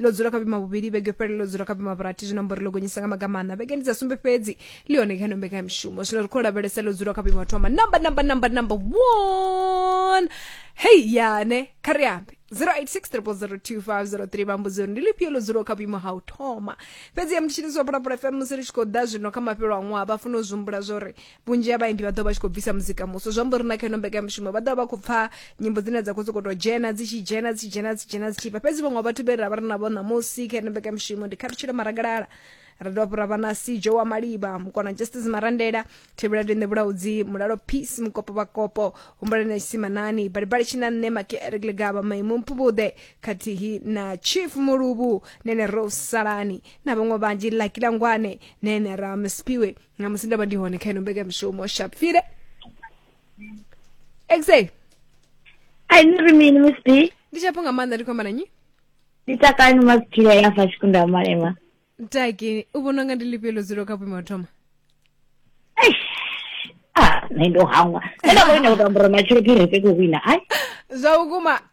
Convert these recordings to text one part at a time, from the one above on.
ḽo dzula kha vhima vhuvhili vhege fhele ḽo dzula kha vhima vhurathi zwino amba uri ḽo gonyisa nga maga maṋa vhegeni dza sumbe fhedzi ḽi hone kha ino mbekanyamishumo zwino ri khou lavhelesa ḽo dzula kha vhima thoma namba namba namba namba one hei yane kha ri ambe 0860025003 vhambudzi uri ndi lifhio ḽo dzulaho kha vhuimo ha u thoma fhedzi ya mutshiniso wa phalaphala fm musi ri tshi khou ḓa zwino kha mafhelo a ṅwaha vha funa u zwi humbula zwo ri vhunzhi ha vhaimbi vha ḓo vha tshi khou bvisa muzika muswa zwi amba uri na kha ino mbekanyamushumo vha ḓo vha vha khou pfa nyimbo dzine dza khou sokou tou dzhena dzi tshi dzhena dzi tshi dzhena dzi dzhena dzi tshi bva fhedzi vhaṅwe vhathu vhe ra vha ri navho ṋamusi kha ino mbekanyamushumo ndi khathutshelo maragalala ra dovha hafhu ra vha na sijo wa maliba mukona justice marandela thevhela tende vhulaudzi mulalo peace mukopo vhakopo humbulani na tshimanani balibali tshina nṋe makeere kilegaba maimu mpuvhuḓe khathihi na chief muluvhu nene rose salani na vhaṅwe vhanzhi laki langwane nene ra mspiwe nga musi ndo vha ndi hone kha ino mbekamishumo shapfile exe Ai ni ri mini Miss B? ndi chapo nga maanḓa ndi khou amba na nyi Ni takani Miss G ya hafha Tshikunda Malema. taki u vhona unga ndi lifhio ḽo dzulaho kha vhuimo ha u thoma Eish. Ah, nṋe ndo hangwa. Nṋe nda vhona u tambura matshilo phiri fhe ku wina. Ai, zwa vhukuma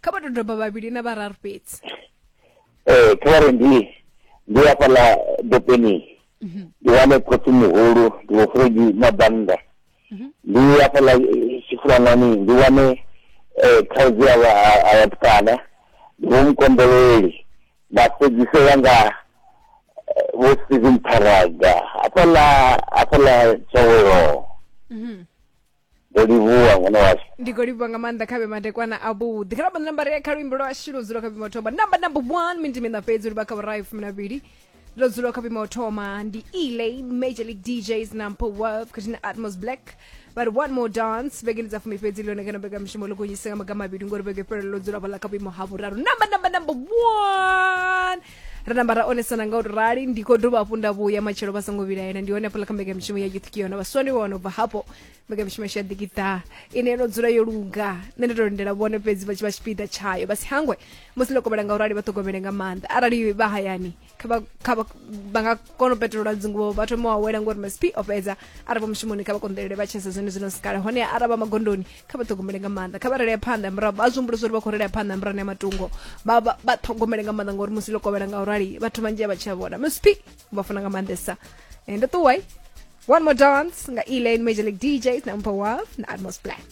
kha vha dodoba vhavhili na vhararu fhedzi ee kha vhari ndi ndi hafhaḽa dopeni mhm. ndi wane khotsi muhulu ndi vhofuredi na bannda mhm. ndi hafhaḽa eh, tshifulanani ndi wane eh, khaudzi ya vhatukana ndi vho mukonḓeleli nda fhedzisela nga eh, vho stephen paraga hafhaḽa hafhaḽa tshaweloho ndo livhuwa ngeno washu ndi khou livhuwa nga maanḓa kha vhe madekwana avhuḓi kha rabana namba ri kha luimbo lwa shilo dzula kha vhima u thoma namba namba one minti mina fhedzi uri vha kha vhurayi fumi na vhili ndo dzula kha vhima u thoma ndi elay major league djs nampo worth khathihi na atmos black vha ri one more dance vhegeni dza fumi fhedzi ḽone kana mbekamishumo ḽo gonyise nga maga mavhili ngori vhege fhelelo ḽo dzula vhala kha vhuimo ha vhuraru namba namba namba one ra namba ra onesana nga u tou rali ndi khou dovha hafhu nda vhuya matshelo vha songo vhilaela ndi hone hafhaḽa kha mbekanyamushumo ya youth kiona vhaswa ndi vhona ubva hafho mbekanyamushumo yashu ya ḓikiṱa ine yo no dzula yo luga nṋe ndo to lindela vhone fhedzi vha tshi vha tshipiḓa tshayo vha si hangwe musi ndo kovhela nga u rali vha ṱhogomele nga maanḓa arali vha hayani kha vha- kha vha vha nga kona u petolola dzinguvo vha thoma u awela ngori masp o fhedza arali vha mushumoni kha vha konḓelele vha tshesa zwone zwino sikala hone arali vha magondoni kha vha ṱhogomele nga maanḓa kha vha relea phanḓa murahu vha zwihumbulisa uri vha khou relea phanḓa murahu ya matungo vha vha- vha ṱhogomele nga maanḓa ngauri musi ḽo kovhela nga urali vhathu vhanzhi a vha tshi a vhona msp vha funa nga maanḓesa Eh, ndo ṱuwai one more dance nga elaine major league djs na mpho waf na atmos black